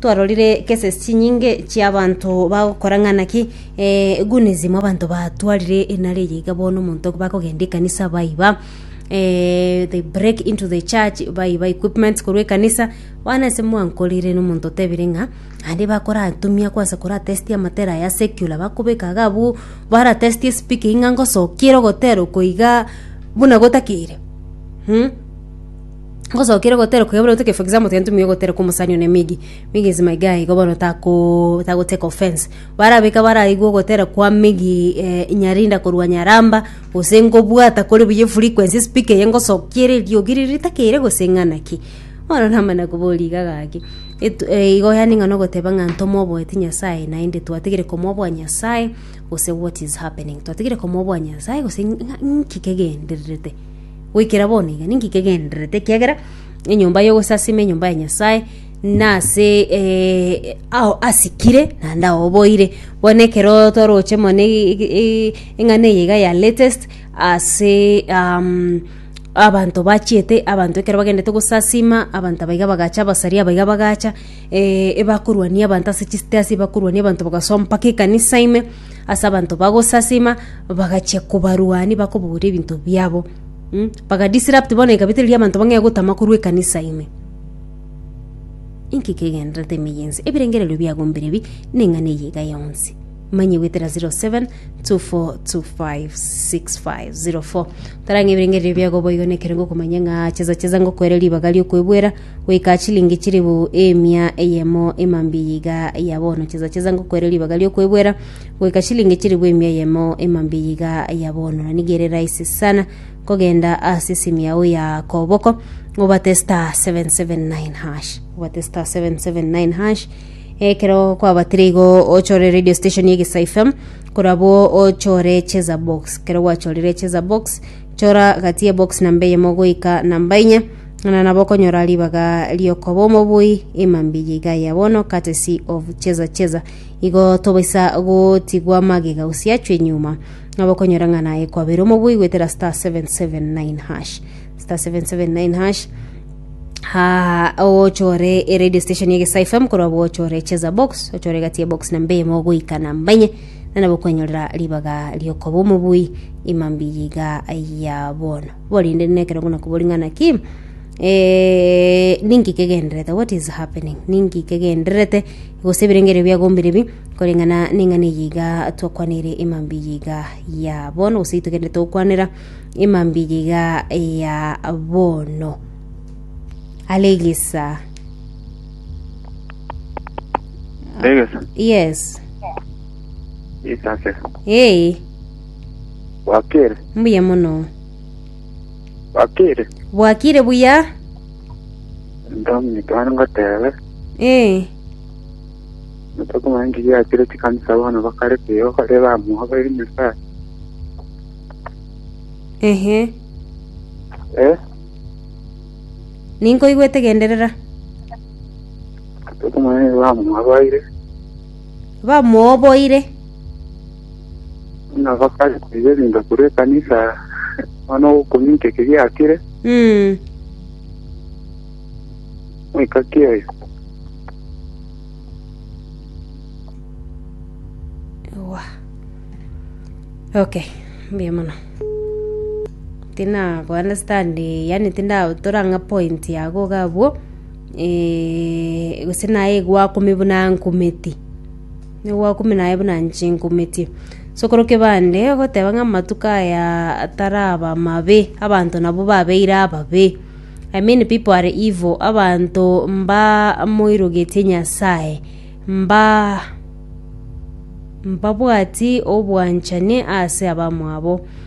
Twarorire cases chinyinge chi'abanto bagokora ng'a naki egunism abanto batwarire nare eye iga bono omonto bakogenda ekanisa baiba they break into the church baiba equipments korwa ekanisa bono ase mwanko ore rirorio omonto otebire ng'a naende bakoratumia kwansa koratestia amatera aya secular bakobeka iga abwo baratestie esipiki ng'a ngosokia ere ogotera oko igaa buna gotakire. Ngosokire gotera kuyabona goteka for example tugende tumiye gotera kwa omusani one migi migi is my guy igo bono tako tako take offense barabeka baraigwe ogotera kwa migi eh, nyarinda korwa nyaramba gose ngobwata kore buya efrequency speaker eye ngosokia ere eriogi riria ritakeire gose ng'ana ki bono namana koboria iga gaki etu eh, igo yaani ng'a nogoteba ng'a ntomoboeti nyasaye naende twatigire komoboa nyasaye gose what is happening twatigire komoboa nyasaye gose ng'a ng'a nki kegendererete Goikera bono iga ninki kegendererete? Ekiagera enyomba y'ogosasima enyomba ya Nyasae nase ao asikire naende ao oboire. Bono ekero toroche mono eng'ana eye iga ya latest ase abanto bachiete abanto ekero bagendete gosasima abanto aba iga bagacha abasari aba iga bagacha ebakorwania abanto ase chisteasi ebakorwania abanto bagasoa mpaka ekanisa ime. ase abanto bagosasima, bagachia kobarwani bakobagoria ebinto biabo. Baga disrupt bono ekabita eria abanto bang'ee gotama korwa ekanisa ime. Inki kegendererete ime yensi? Ebirengererio biago mbire bi, neng'ana eye iga yonsi. Manye goetera 0724256504. Tarang'a ebirengererio biago boigo nekerengo okomanya ng'a chesa chesa ngokoere ribaga riokwebwera, goika chilingi chilifu emia eyemo emambiya iga ya bono chesa chesa ngokoere ribaga riokwebwera goika chilingi chilifu emia eyemo emambiya iga ya bono na nigo ere rahisi sana kogenda ase esimi yao ya koboko obate star 779 hash obate star 779 hash ekero kwabatire igo ochore radio station egesa fm korabwo ochore cheza box ekero gwachorire cheza box chora gati ebox namba eyemo goika namba enye Ng'ana nabo okonyora ribaga ri'okoba omobui ime mbiya iga ya bono, courtesy of Cheza Cheza. Igo tobaisa gotigwa magega gose achwe nyuma. Nabo okonyora ng'ana ekwabera omobui goetera star 779 hash. Star 779 hash ha ochore e radio station ege Star FM korwa bo ochore cheza box ochore egati ya box namba eyemo goika namba enye na nabo okwenyorera ribaga riokoba omobui imambi yiga ya bono Korende nekerogo na kobori ng'ana ki eh, ninki kegenderete what is happening ninki kegenderete gose ebirengerio biagombire bi koreng'ana neng'ana eye iga twakwanire emambi eye iga ya bono gose itogenderete gokwanera emambi eye iga ya bono alegesa Ndegesa. yes Isase. hey Bwakire. Mbuya mono. Bwakire. Bwakire buya. Ndomnyete bana ngotebe. Eh. Natokumanya ngigi yakire chikanisa bono bakare kuyo kore bamuha bari Nyasaye. Ehe. Eh. Ninkoigwete genderera. Natokumanya bamuha baire. bamooboire. Buna bakare koibelinda korwa ekanisa, nonya nogokonywa inche eke giakire, goika ki oyo? Ewa. Okay, mbuya mono. Tinago understand, yaani tindatora ng'a point yago iga abwo. gose naye egwakumia buna nkumeti, egwakumia naye buna inche nkumetie. So ekero kebande ogoteba ng'a amatuko aya ataraba amabe, abanto nabo babeire ababe, I mean people are evil, abanto mbamoirogetie Nyasaye, mba mbabwati obwanchani ase abamwabo.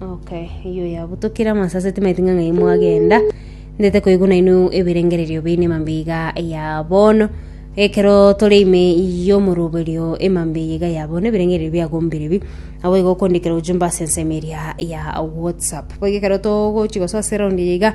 Okay, iyo yabutokire amasase timaiti ng'a ng'ai mwagenda ndete koigwa naino ebirengererio bine emambe iga ya bono ekero tore ime y'omoroberio emambe iga ya bono ebirengererio biagombire bi abo igo okondikera ujumbe ase ensemo eria ya whatsapp boigo ekero togochi gosoa ase eraundi eye iga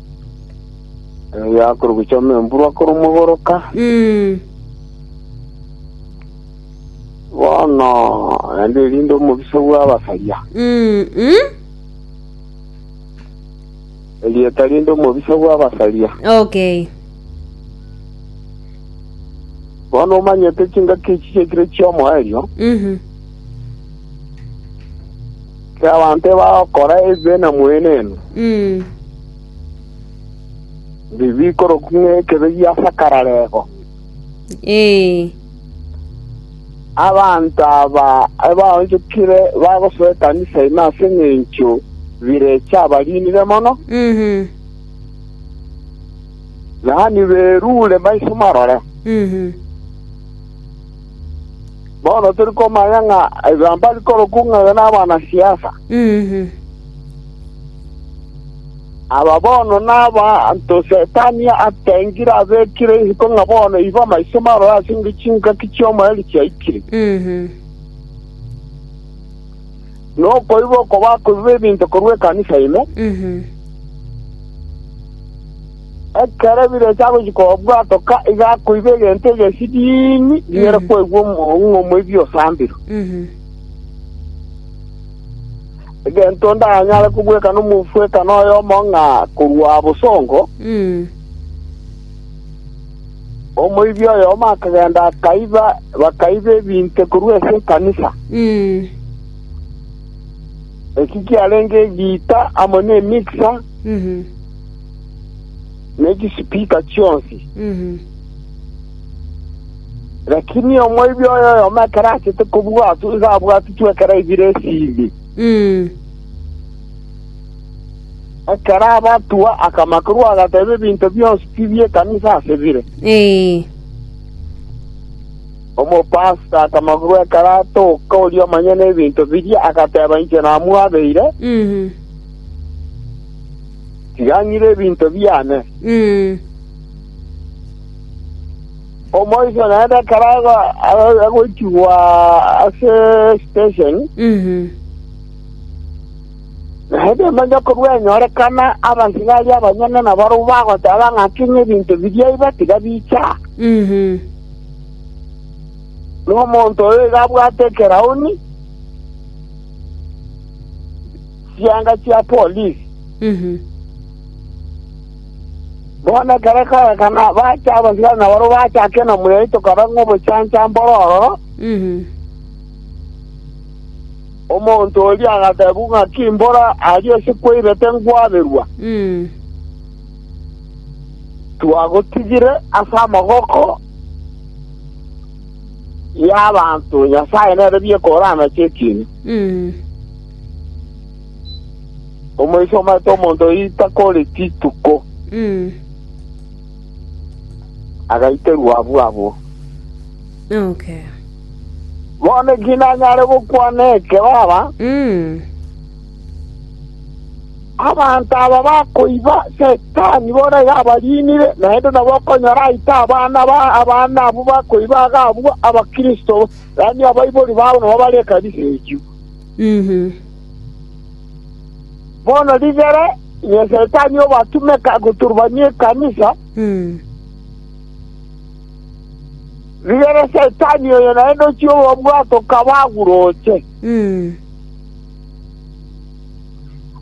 Erio akorwa gochia amo emvurwa akoromogoroka. Mm. Bono naende erinde omobisa bw'abasaria. Mm. Mm. Erieta rinde omobisa bw'abasaria. Okay. Bono omanyete chingaki echi chiekire chi'omoerio, Mhm. Abanto bagokora ebibe na mweneno, bikorokwa ng'a ekebe gia sakararego. Abanto aba ebaonchokire bagosoa ekanisa ime ase engencho birecha abariinire mono, yaani berure maiso marore. Bono tori komanya ng'a ebibaanto bikorokwa ng'a iga nabanasiasa. Aba bono nabaanto Setani atengire abekire isiko ng'a bono igo amaiso marore ase engencho chingaki chi'omoerio chiaikire, na okoiba oko bakoiba ebinto korwa ekanisa ime. Ekero ebirecha agochia kobua atoka, iga akoigwa egento egesidiimi riere kwaigwa omoong'u ng'omoibia osambirwe. Egento onde anyare kobweka nomofwekano oyomo ng'a korwa bosongo, omoibia oyomo akagenda akaiba, bakaiba ebinto korwa ase ekanisa. Eki kiarenge egiita amo nemixer. ne chisipika chionsi. Lakini omoibi oyo oyomo ekero achete kobua ase iga abwatitwe ekero aibire esindi. Ekero abatua akama korwa agateba ebinto bionsi pi bi'ekanisa ase bire. Ee. Omopasita akama korwa ekero atoka oria omonyene ebinto biria agateba inche namwabeire, Mhm. Tiga ng'ire ebinto biane. Omoiso naende ekero ago- ago- agoichigwa ase station, naende emenyo korwa enyorekana abasigari abanyene nabarabwo bagoteba ng'aki ng'a ebinto biria iba tiga bicha. Nomonto oyo iga abwate ekerauni. chianga chia polisi. Bono ekero kagakana bacha abasigari na barabwo bacha ake na muyeye tokaba ng'a obochanchambe ore ororo. Omonto oria agateebwa ng'aki mbora aria ase kweirete ngwaberwa. Twagotigire ase amaboko y'abanto, Nyasae nere bieka oranache ekiina. Omoiseke omanyete omonto oyio takore chituko, Mm. agaiterwa abwo abwo. Okay. Bono ki nanyare gokwana eke, baba? Mm. Abanto aba bakoiba Setani bono iga abarinire, naende nabo okonyora aite abana ba abana abwo bakoiba agabua Abakristo, yaani abaibori babo nabo bare ekanisa eyio. Bono rigere, inwe Setani obatumeka goturbania ekanisa, rigere Setani oyo naende ochie obabwate okaba aguroche.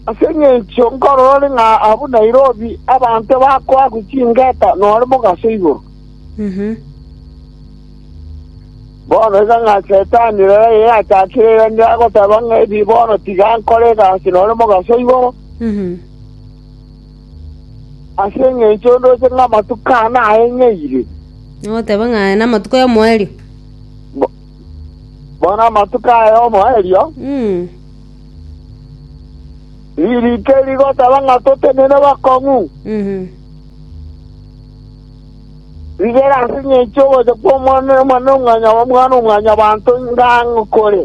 Ase engencho nkororore ng'a abwo Nairobi abanto bakoagwa chingeta nore mogaso igoro. Bono iga ng'a Setani rora ere achakire erende agoteba ng'a ebibe bono tiga nkore egasi nore mogaso igoro, ase engencho ondoche ng'a amatuko aa naeng'eire. Nagoteba ng'a aya namatuko y'omoerio. Bo- Bono amatuko aya omoerio, Mm. ririke rigoteba ng'a totenene bakong'u, Mhm. Rigera ase engencho y'ogocha kw'Omwana‐o‐mwanyabanto ng'ang'u kore.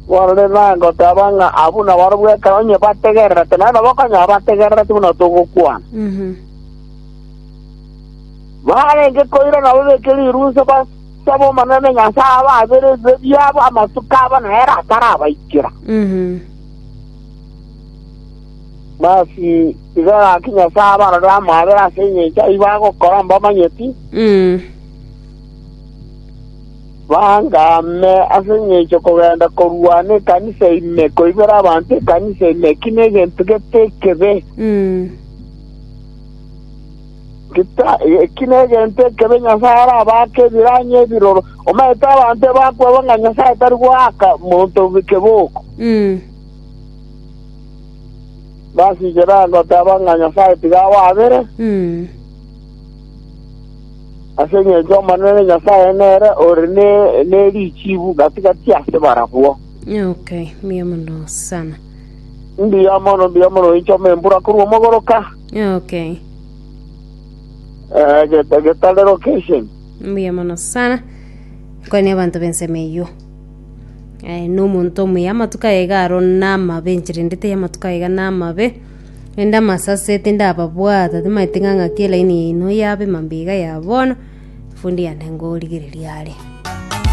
Barore nagoteba ng'a abwo nabarabwo ekero onye bategererete, naende bakonyora bategerereti buna togokwana. Barenge koira nabo beke riruse basabe Omonene Nyasae ababere ebibe biabo, amatuko abo nere atarabaikera. Basi, igo gaki Nyasae abarorere amaabera ase engencho ayio bagokora mbamanyeti, baangame ase engencho kogenda korwana ekanisa ime, koibera abanto ekanisa ime, eki negento gete ekebe. Geta- Eki negento ekebe Nyasae arabaake ebiranyi ebiroro. Omanyete abanto ebakwebwa ng'a Nyasae tari goaka monto keboko. Basiche bagoteba ng'a Nyasae tiga awabere, ase engencho Omonene Nyasae nere ore ne- nerichiibu gati-gati ase barabwo. Okay, mbuya mono sana. Mbuya mono, mbuya mono, oinchoma embura korwa omogoroka, Okay, eh, geta- getare location. mbuya mono sana. Kwane abanto b'ensemo eyio. Aye nomonto omuya amatuko aye iga aro namabe enchera ende teri amatuko aye iga namabe, rende amasase tindababwata timaeti ng'a ng'aki elaini yaino yabe mambia iga ya bono, efundi yane ngorigereria are.